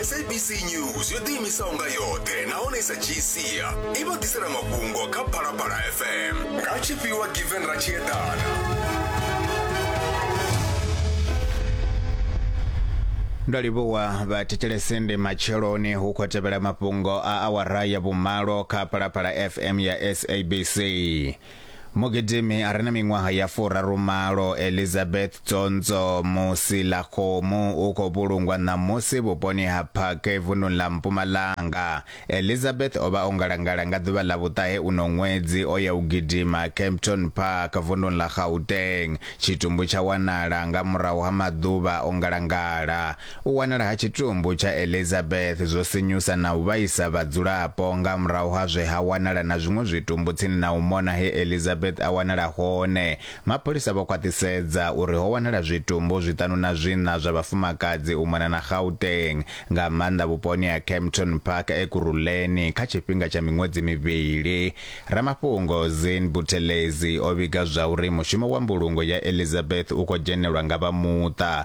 sabc news yo ḓiimisaho nga yoṱhe nahone sa tshiisia i vha ḓisela mafhungo kha phalaphala fm nga tshifhiwa given ra tshi eḓana ndo livhuwa vhathetshelesende matsheloni hu khou tevhela mafhungo a awara ya vhumalo kha phalaphala fm ya sabc Mugidimi a re na miṅwaha ya furaru malo Elizabeth Tsonzo Musilakgomo u khou vhulungwa ṋamusi vhuponi ha Phake vunḓuni ḽa Mpumalanga. Elizabeth o vha o ngalangala nga ḓuvha ḽa vhuṱahe uno ṅwedzi o ya u gidima Kempton Park vunḓuni ḽa Gauteng. Tshitumbu tsha wanala nga murahu ha maḓuvha o ngalangala. U wanala ha tshitumbu tsha Elizabeth zwo sinyusa na u vhaisa vhadzulapo. Nga murahu ha zwe ha wanala na zwiṅwe zwitumbu tsini na u mona he Elizabeth a wanala hone, mapholisa vho khwaṱhisedza uri ho wanala zwitumbu zwiṱanu na zwiṋa zwa vhafumakadzi u mona na Gauteng, nga maanḓa vhuponi ha Kempton Park Ekurhuleni kha tshifhinga tsha miṅwedzi mivhili. Ramafhungo Zin Buthelezi o vhiga zwauri mushumo wa mbulungo ya Elizabeth u khou dzhenelwa nga vha muṱa,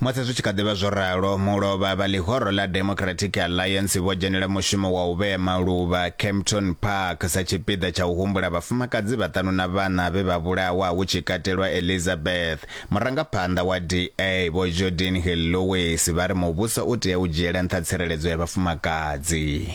Musi zwi tshi kha ḓi vha zwo ralo, mulovha vha ḽihoro ḽa Democratic Alliance vho dzhenela mushumo wa u vhea maluvha Kempton Park sa tshipiḓa tsha u humbula vhafumakadzi vhaṱanu na vhana vhe vha vhulawa hu tshi katelwa Elizabeth. Murangaphanḓa wa DA Vho Jordin Hill-Lewis vha ri muvhuso u tea u dzhiela nṱha tsireledzo ya vhafumakadzi.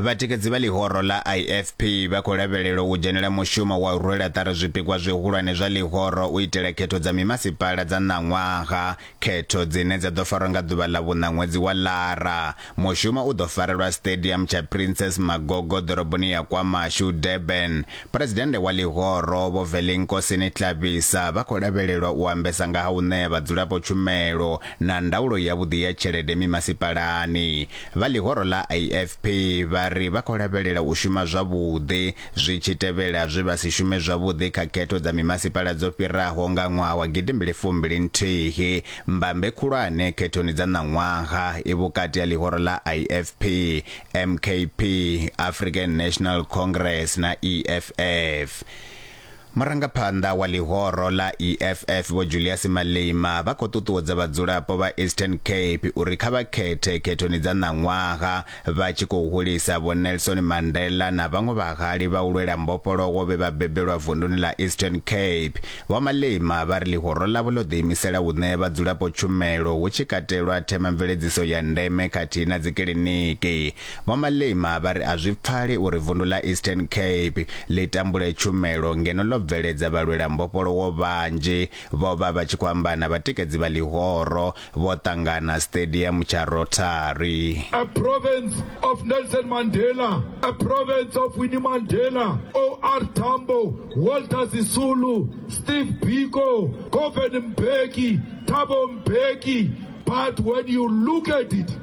vhatikedzi vha ḽihoro ḽa ifp vha khou lavhelelwa u dzhenela mushumo wa u rwela ṱari zwipikwa zwihulwane zwa ḽihoro u itela khetho dza mimasipala dza ṋaṅwaha Khetho dzine dza ḓo farwa nga ḓuvha ḽa vhuṋa ṅwedzi wa Lara. Mushumo u ḓo farelwa Stadium tsha Princess Magogo ḓoroboni ya KwaMashu, Durban. Phresidennde wa ḽihoro, Vho Velinkosini Tlabisa, vha khou lavhelelwa u ambesa nga ha u ṋea vhadzulapo tshumelo na ndaulo yavhuḓi ya tshelede mimasipalani. Vha ḽihoro ḽa IFP vha ri vha khou lavhelela u shuma zwavhuḓi Zwi tshi tevhela zwe vha si shume zwavhuḓi kha khetho dza mimasipala dzo fhiraho nga ṅwaha wa gidimbili fumbili nthihi, mbambe khulwane khethoni dza ṋaṅwaha i vhukati ha ḽihoro ḽa IFP, MKP, African National Congress na EFF. Murangaphanḓa wa ḽihoro ḽa EFF Vho Julius Malema vha khou ṱuṱuwedza vhadzulapo vha Eastern Cape uri kha vha khethe khethoni dza ṋaṅwaha vha tshi khou hulisa Vho Nelson Mandela na vhaṅwe vhahali vha u lwela mbofholowo vhe vha bebelwa vunduni ḽa Eastern Cape. Vho Malema vha ri ḽihoro ḽavho ḽo ḓiimisela u ṋea vhadzulapo tshumelo hu tshi katelwa themamveledziso ya ndeme khathihi na dzikiḽiniki. Vho Malema vha ri a zwi pfali uri vundu ḽa Eastern Cape ḽi tambule tshumelo ngeno ḽo bveledza vhalwela mbofholowo vhanzhi vho vha vha tshi khou amba na vhatikedzi vha ḽihoro vho ṱangana siṱediamu tsha Rotary. A province of Nelson Mandela, a province of Winnie Mandela, OR Tambo, Walter Sisulu, Steve Biko, Govan Mbeki, Thabo Mbeki, but when you look at it,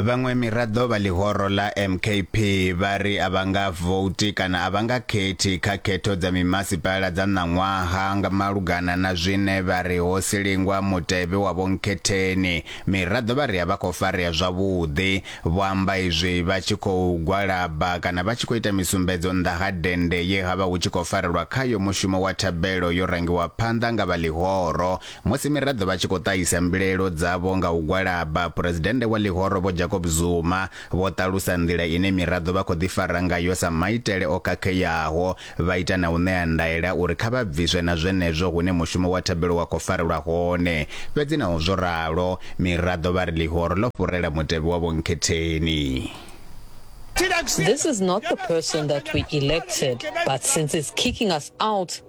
Vhaṅwe miraḓo vha ḽihoro ḽa MKP vha ri a vha nga vouti kana a vha nga khethi kha khetho dza mimasipala dza ṋaṅwaha nga malugana na zwine vha ri ho silingwa mutevhe wa vhonkhetheni. Miraḓo vha ri a vha khou farea zwavhuḓi. Vho amba izwi vha tshi khou gwalaba kana vha tshi khou ita misumbedzo nnḓa ha dennde ye ha vha hu tshi khou farelwa khayo mushumo wa thabelo yo rangiwa phanḓa nga vha ḽihoro Musi miraḓo vha tshi khou ṱahisa mbilaelo dzavho nga u gwalaba, Phresidennde wa ḽihoro Vho Jacob Zuma vho ṱalusa nḓila ine miraḓo vha khou ḓifara ngayo sa maitele o khakheaho, vha ita na u ṋea ndaela uri kha vha bviswe na zwenezwo hune mushumo wa thabelo wa khou farelwa hone. Fhedzi naho zwo ralo, miraḓo vha ri ḽihoro ḽo fhurela mutevhe wa Vho Nkhetheni. This is not the person that we elected, but since it's kicking us out,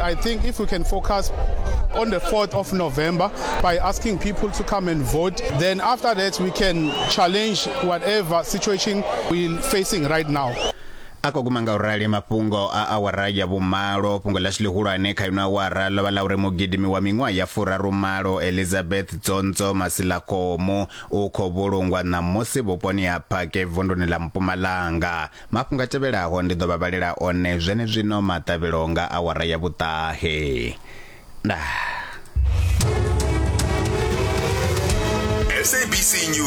I think if we can focus on the 4th of November by asking people to come and vote, then after that we can challenge whatever situation we're facing right now. a khou guma nga u rali mafhungo a awara ya vhumalo fhungo ḽashu ḽihulwane kha ino awara ḽo vha ḽa uri mugidimi wa miṅwaha ya furarumalo elizabeth dzonzo masilakomu u khou vhulungwa ṋamusi vhuponi ha phake vunduni ḽa mpumalanga Mafhungo a tevhelaho ndi ḓo vha vhalela one zwenezwino maṱavhelo nga awara ya vhuṱahe. Ndaa. SABC News.